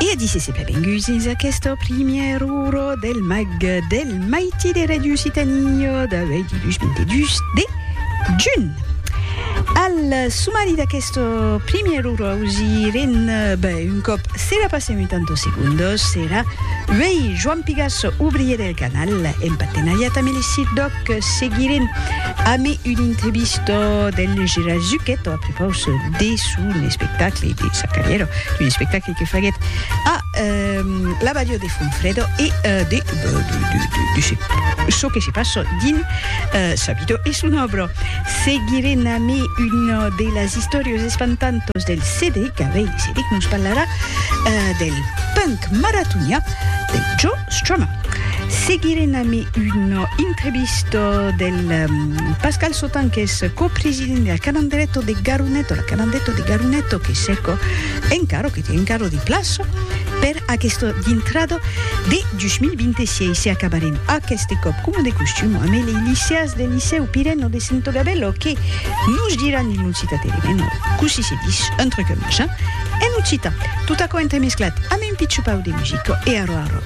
E a disse se benvenguts dins aqueste primièr uro del mag del maiti de Radio Occitània d'avui dilhus 22 de junh. Al sumari d'aqueste primièr uro ausirem ben un còp serà passèm un tanto segundos serà uèi Joan Pigas, obrier del canal, en partenariat amb Elisir Doc, que seguirem ame un entrevista del Gerard Zucchetto a prepaus de son espectacle de sa carrièra, un espectacle que faguèt a la balhò de Fonfrèdo e de çò que se passa dins sa vida e son òbra. Seguirem ame una de las istòrias espantantas del Cedric, avei Cedric nos parlarà del punk maratonià de Joe Strummer. Seguirem ami una entrevista del Pascal Sautin qu'es copresident de la Calandreto de Garuneto, la Calandreto de Garuneto que seco encaro, que té encaro de plaça per aquesta dintrada de 2026 e acabarem aqueste còp coma de costum amb lei liceas del Licèu Pireno de Sento Gabello que nos diràn il non cita tere meno cossí se dis un truc machin en occitan. Tot aquò entremesclat amb un pitjopau de musica e arrò arrò.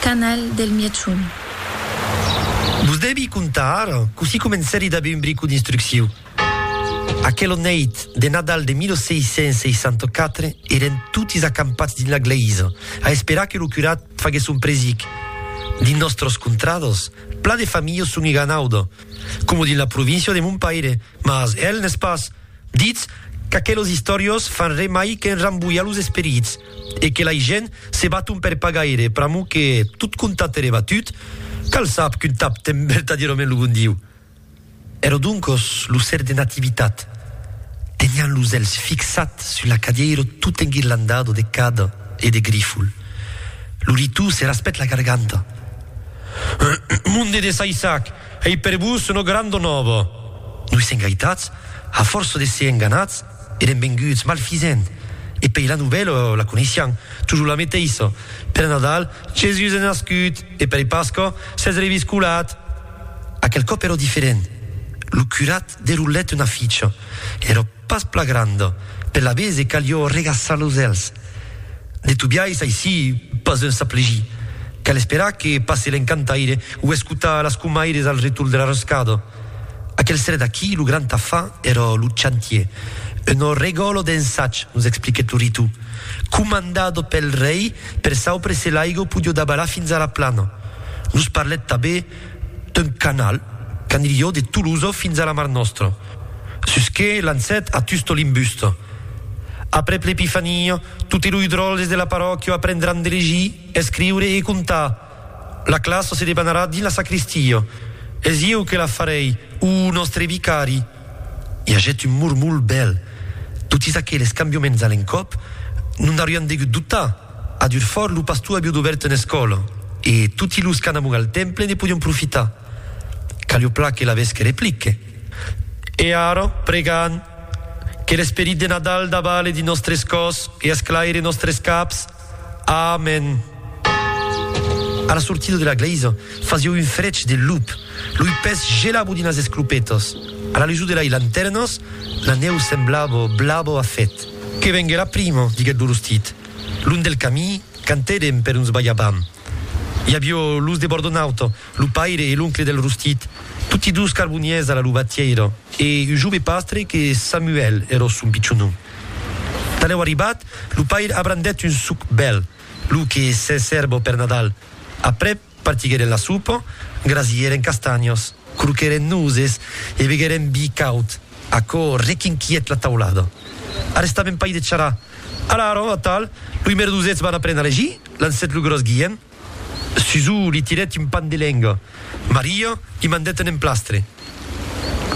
Canal del Mièchon. Vos devi contar ara cossí comencèri d'aver un brico d'instrucciu. Aquela nèit de Nadal de 1664 eren totis acampats dins la glèisa a esperar que lo curat faguèsse son presic. Dins nòstras contradas, plan de familhas son eganauda, coma dins la província de mon paire, mas el n'es pas. Ditz qu'aquelos istoriós fan re mai qu'enrambolhar los esperits e que lai gent se baton per pas gaire, pr'amor que tot contat ere batut, cal sap qu'un tap ten vertadièrament lo bon Diu. Ero doncos lo ser de Nativitat, tenián los elhs fixat sus l'acadièiro tot enguirlandado de cada e de grifol. Lo ritou se raspèt la garganta. Monde de Saissac! Ei per vos una granda nòva. Noi sèm gaitats, a fòrça de ser enganats, èrem venguts malfisent, e pei la novèla la coneissián, tujor la meteissa, per Nadal, Jesús es nascut, e per Pasca, s'es reviscolat. Aquel còp èra diferent. Lo curat derolèt una ficha. Èra. Pas pla granda, per la bese calió regaçar los èlhs. De tu biais aicí pas un saplegir. Cal esperar que passe l'encantaire o escotar las comaires al retorn de la roscada. Aquel serè d'aquí lo grand afar èra lo chantier, un ò regòlo d'ensatge, nos expliquèt lo Ritu, comandado pel rei per saupre se l'aigo podió dabalar fins a la plana. Nos parlèt tabé d'un canal qu'anilhó de Tolosa fins a la Mar Nòstra, sus que lancèt a Tusto l'imbusta. Aprèp l'Epifania, totes lo idròles de la parròquia aprendràn de legir, escriure e contar. La classa se debanarà dins la sacristia. Es ieu que la farèi, o nòstre vicari. I agèt un mormol bèl. Totis aqueles cambioments a l'encòp, non n'aurián degut dotar. A Durfort, lo pastor aviá dobèrt una escòla e toti los qu'an amor al temple ne podián profitar. Callopla que laves que replique. E ara, pregan, que l'esperit de Nadal davale dins nòstres còs e esclaire nòstres caps. Amen! A la sortida de la glèisa fasieu un frech de lup, loi pes gelabo dins las esclopetas, a la lusor de lai lantèrnas, la nèu semblabo blabo a fèt. Que vengue la prima, diguèt lo rostit. Long del camí, cantèrem per uns balhabam. I avió los de Bordonauta, Lo paire e l'oncle del rostit, toti dus carboniers a la lubatièira, e un jove pastre que Samuèl ero son pichon nom. Tanlèu arribat, lo paire abrandèt un suc bèl, lo que se sèrbo per Nadal. Aprèp, partiguèren la sopa, grasièren castanhas, croquèren noses e beguèren vi caud. Aquò requinquièt la taulada. Arrestaven pas de charrar. Alara, atal, loi merdosets van aprendre a legir, lancèt lo gròs Guilhem. Susù li tirèt un pan de lenga. Maria li mandèt un emplastre.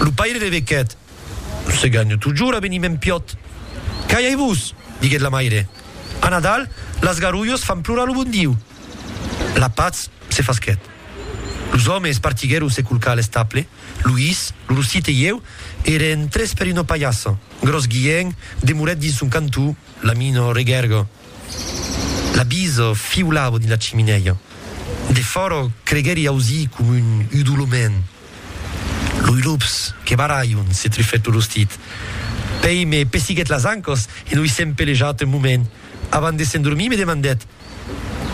Lo paire revequèt, Se ganho totjorn aveniment piòt. Calhai-vos! diguèt la maire. A Nadal, las garulhas fan plorar lo bon Diu. La patz se fasquèt. Los òmes partiguèron se colcar a l'estable, Luís, lo rossite e ieu, e eren tres per una palhassa. Gròs Guilhèn demorèt dins son cantó. L'amino regèrgo l'abiso fiulavo dins la chiminèia. De fòro creguèri ausir com un udolament. Loi lops que barraion se trufèt lo rostit. Pei me pessiguèt las ancas e noi s'èm pelejat un moment. Avant de s'endormir me demandèt,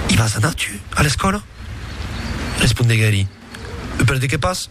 I vas anar, tu, a l'escòla? Respondeguèri, E per de qué pas?